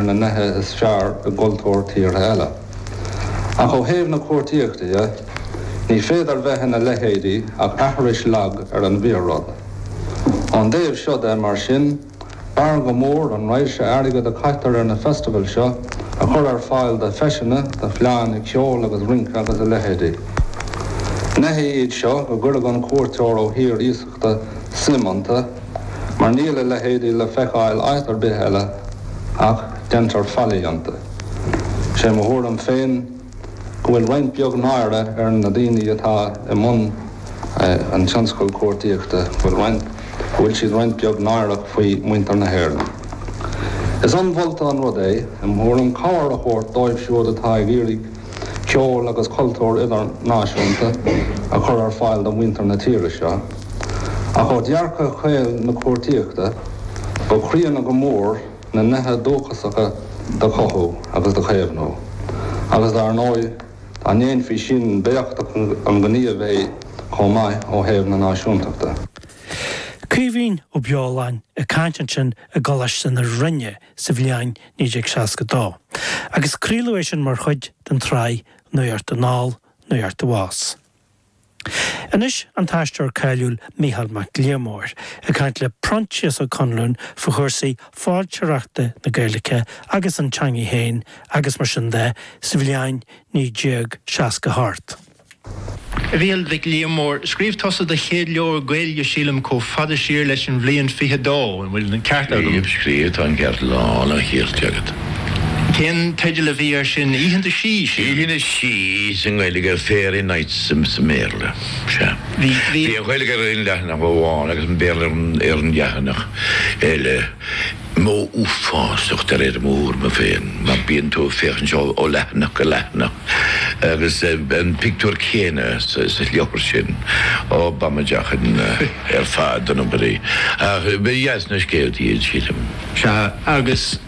ar na nithe is fearr i gcultúr tíortha eile. Ach ó thaobh na cuartaíochta dhe, ní féidir bheith ina leithéidí ach aithris lag ar an bhfíor-rud. Ón dtaobh seo de, mar sin, b'fhearr go mór an raidhse airgid a chaitear ar na festival seo a chur ar fáil do feiseanna, do fleánna ceoil agus rince agus a leithéidí. Neithe iad seo go gcuirfeadh an cuairteoir ó thír suim iontu, mar níl a leithéidí le feiceáil áit ar bith eile, ach deintear faillí iontu. Sé mo thuairim féin go bhfuil roinnt beag náire ar na daoine atá i mbun an tionscail cuartaíochta, go bhfuil go bhfuil siad roinnt beag náireach faoi mhuintir na hÉireann. Is ionmholta an rud é, im' thuairim, cabhair a thabhairt dóibh siúd atá ag iarraidh, ceol agus cultúr idirnáisiúnta a chur ar fáil do mhuintir na tíre seo. Ach ó dhearcadh caol na cuartaíochta, ba chríonna go mór na nithe dúchasacha do chothú agus do chaomhnú, agus dar ndóigh, dá ndéanfaí sin, b'éachtach an gníomh é chomh maith ó thaobh na náisiúntachta. Caoimhín Ó Beoláin ag caint ansin i gColáiste na Rinne sa bhliain 1962, agus craoladh é sin mar chuid den tsraith Nuacht Anall, Nuacht Abhus. Anois an t-aisteoir cáiliúil Micheál Mac Liammóir ag caint le Proinsias Ó Conluain faoi chúrsaí foilsitheoireachta na Gaeilge agus an teanga féin agus mar sin de sa bhliain 1968. Mhichíl Mhic Liammóir, Scríobh tusa do chéad leabhar Gaeilge sílim comh fada siar leis an bhliain 22, an bhfuil an ceart agam? Scríobh, tá an ceart lán an chirt agat. Cén teideal a bhí ar sin? Oícheanta Sí, sílim. Oícheanta Sí sa nGaeilge ar Fairy Nights sa mBéarla. Sea. Bhí an Ghaeilge ar aon leathanach amháin agus an Béarla ar an leathanach eile. Modh uafásach de réir mo thuairime féin, mar bíonn tú ag féachaint ó leathanach go leathanach agus an pictiúr céanna sa leabhar sin, ó b'amaideach ar fad an obair í. Ach ba dheas na scéaltaí iad, sílim. Sea, agus.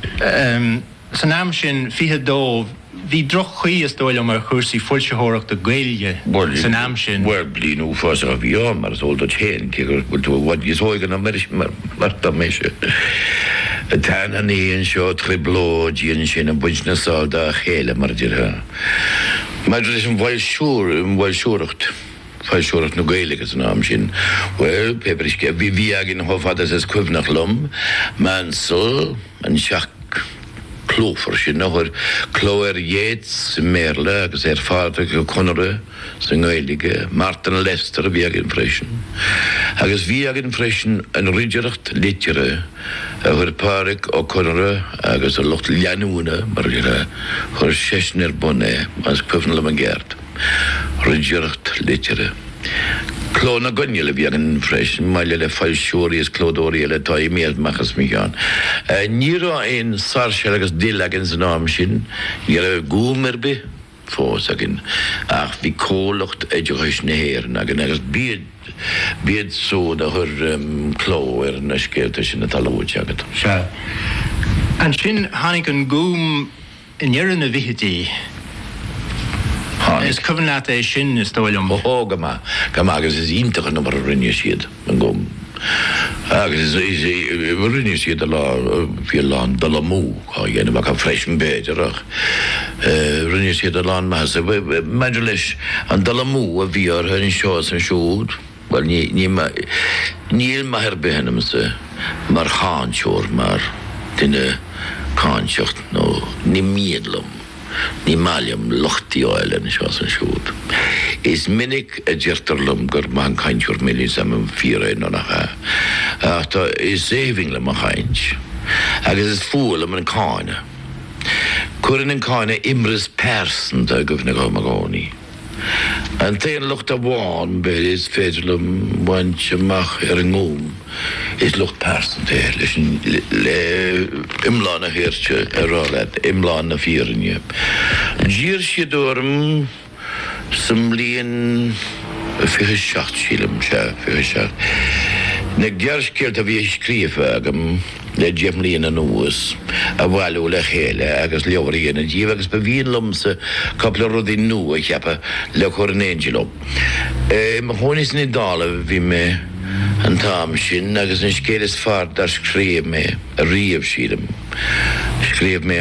San am sin, 22, bhí droch-chaoi, is dóigh liom, ar chúrsaí foilsitheoireachta Gaeilge san am sin. Bhuel, bliain uafásach a bhí ann, mar is eol duit féin, cé go bhfuil tú i bhfad níos óige ná mise. Troideannaí anseo, trioblóidí ansin ag baint na sál dá chéile, mar a déarfá. Maidir leis an bhfoilsiúracht, foilsitheoireacht na Gaeilge san am sin, bhuel, pé brisce a bhí againn chomh fada is is cuimhneach liom, Maunsel, an teach clúmhar sin a chuir cló ar Yeats i mBéarla agus ar Phádraic Ó Conaire sa nGaeilge, Martin Lester a bhí againn freisin, agus bhí againn freisin an ridireacht liteartha a chuir Pádraic Ó Conaire agus a lucht leanúna, mar a chuir seisean ar bun é, más cuimhin liom i gceart. Ridireacht liteartha. Cló na gCoinneal a bhí againn freisin, maille le foilsitheoirí is clódóirí eile atá imithe amach as mo cheann. Ní raibh aon Sáirséal agus Dill againn san am sin, ní raibh Gúm ar bith fós againn, ach bhí Comhlucht Oideachais na hÉireann againn agus b'iad siúd a chuir cló ar na scéalta sin atá luaite agat. Sea. Ansin tháinig an Gúm. i ndeireadh na bhfichidí, tháinig. Is cuimhin leat é sin, is dóigh liom. Ó, go maith, go maith, agus is iontach an obair a rinne siad, go. Agus rinne siad a lán, bhí a lán dul amú á dhéanamh acu freisin b'fhéidir ach rinne siad a lán maitheasa. Maidir leis an dul amú a bhí orthu anseo is ansiúd, Bhuel, ní, ní, níl maith ar bith ionamsa mar cháinteoir, mar dhuine cáinteach, nó ní mian liom, ní maith liom locht a fháil anseo is ansiúd. Is minic a deirtear liom gur maith an cainteoir mé, níl 's a'm an fíor é nó nach ea, ach tá, is aoibhinn liom an chaint, agus is fuath liom an cáineadh. Cuireann an cáineadh imreas pearsanta i gcuimhne dhom i gcónaí. An t-aon locht amháin, b'fhéidir, is féidir liom a bhaint amach ar an nGúm, is locht pearsanta é, leis an, le, iomlán an chirt a rá leat, iomlán na fírinne. D'iarr siad orm, sa mbliain fiche seacht, sílim, sea, fiche seacht, na gearrscéalta a bhí scríofa agam, le deich mbliana anuas, a bhailiú le chéile agus leabhar a dhéanamh díobh, agus ba mhian liomsa cupla rudaí nua a cheapadh le cur in éindí leo. I mo chónaí san Iodáil a bhí mé an t-am sin, agus an scéal is fearr dár scríobh mé riamh, sílim, scríobh mé